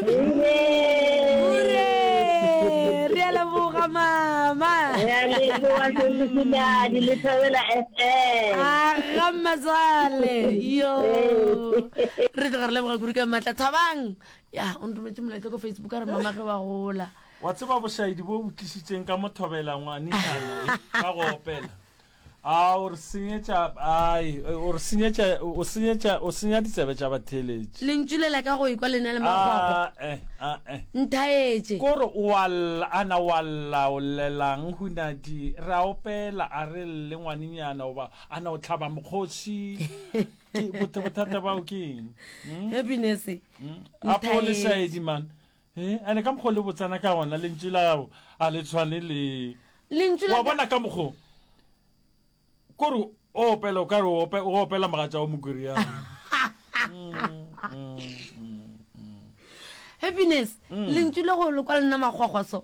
Hure! Re a leboga mama. Re a leboga Semosiladi le Thobela FM. Aga mmatswale. Yo. Re tloga re leboga kuru ka matla. Thabang. Ya, o nrometse molaetsa ko Facebook a re mama ge wa gola. Wa tseba bošaedi bo bo tlisitseng ka mothobela ngwanešana ka go opela. A o re senyetša, ai, o re senyetša, o senyetša, o senya ditsebe tša batheeletši. Lentšu lela ka go ekwa le na le magwagwa. A-e, a-e. Nthaetše. Ko re o a lla, a na o a lla, o llelang, hunadi? Re a opela, a re lle, ngwanenyana, goba a na o hlaba mokgoši? Ke, bothe, bothata bao ke eng? Hm? Happiness. Hm? Apo o le šaedi, man. Ee, and ka mokgwa o le botsana ka gona, lentšu la gago a le tshwane le. Lentšu la. Wa bona ka mokgwa kore o opela o ka re o opela mogatša wa Mokoriana. Happiness, lentšu le go le kwa lena makgwakgwa so.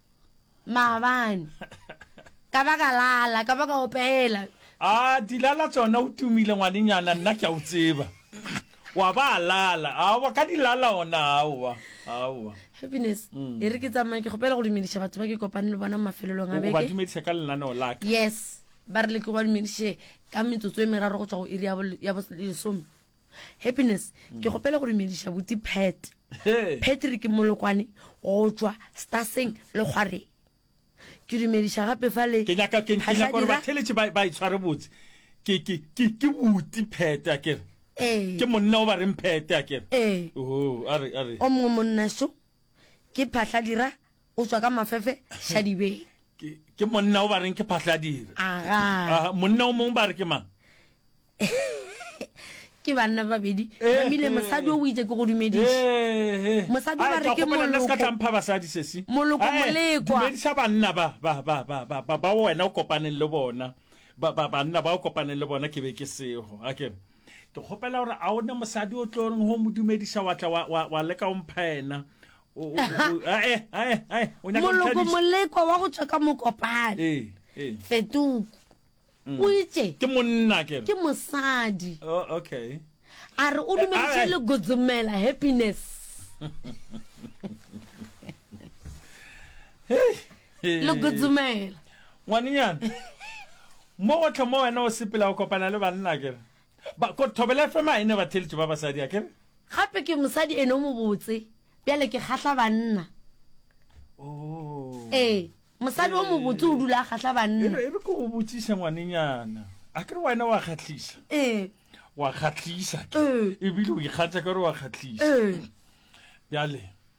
maabane ka ba ka lala ka ba ka opela a dilala tsona o tumile ngwanenyana nna ke a o tseba wa ba lala aowa ka dilala ona aowa aowa happiness mm. e re ke tsamaye ke kgopela go dumediša batho ba ke kopane le bona mo mafelelong a beke dumediša ka lenaneo laka yes ba re le ke ba dumediše ka metsotso e meraro go tswa go iri ya bolesome Happiness, ke kgopela go dumediša buti Pat, Patrick Molokwane go tšwa Staseng le Kgwareng. Ke dumediša gape fa le Ke nyaka ke ke nyaka gore Phahladi ra- batheletše ba ba itshware botse. Ke ke ke ke buti Phete a kere. Ee. Ke monna o ba reng Phete a kere. Ee. Oh, a re a re. O mongwe monnaxo Ke Phahladira, o tšwa ka Mafefe, Shadibeng. Ke, ke monna o ba reng ke Phahladira. Aga. Aha, monna o mong ba re ke mang? ke banna babedi gamile eh, mosadi o itse ke go dumediša eh, eh, mosadi ba re ke molokotlampha basadi sesi moloko molekwamedisa banna ba wena o kopaneng le bona banna ba o kopaneng le bona ke be ke sego a kere Ke kgopela gore a o ne mosadi o tlo reng go mo dumediša wa tla wa- wa- wa leka o mpha ena O- o- o- ae, ae, ae, o nyaka go moloko ntlhadiša? molekwa wa go tswa ka mokopane Ee, ee. fetuku Mm. o itse ke monna ke re. ke mosadi Oh, okay a re o Eh, dumeditše ae. le godzomela happiness Hey, le kudzumela ngwanenyana mo gotlhe mo wena o sepela o kopana le banna akere ba ko thobela fm a e ne ba theletše ba basadi akere gape ke mosadi ene o mobotse bjale ke kgahla banna oh. ee mosadi o mobotse o dula a kgahla banna e re ke go botsiša ngwanenyana a kere wena wa kgatlhisa ee wa kgatlhisa ke ee. ebile o ikgatsa ka gore wa kgatlhisa ee. bjale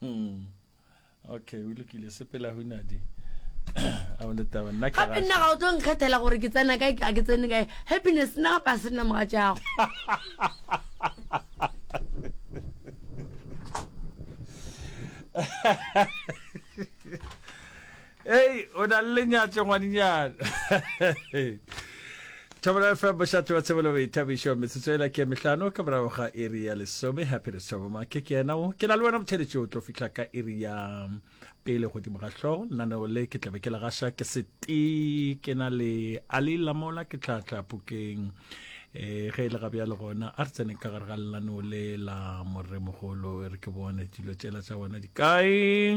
Hmm. okay o lokile sepela hunadi gape nna ga o tlo nkgethela gore ke tsena kae a ke tsene kae happiness nna gape a se nna moga jago Hei, o na le lenyatše ngwadinyana. Thobela FM bošate wa tshebelo boithabišo metsotso e la ke mehlano ka morago ga iri ya lesome happy re tshoboma ke ke yena o ke na le wena motheletši o tlo fihla ka iri ya pele godimo ga hlogo lenaneo le ke tlabe ke le gaša ke sete ke na le ali lamola ke tlhatlha pukeng um eh, ge e le gabja le gona a re tseneng ka gare ga lenaneo le la moremogolo e re ke bone dilo tšela tša bona di kae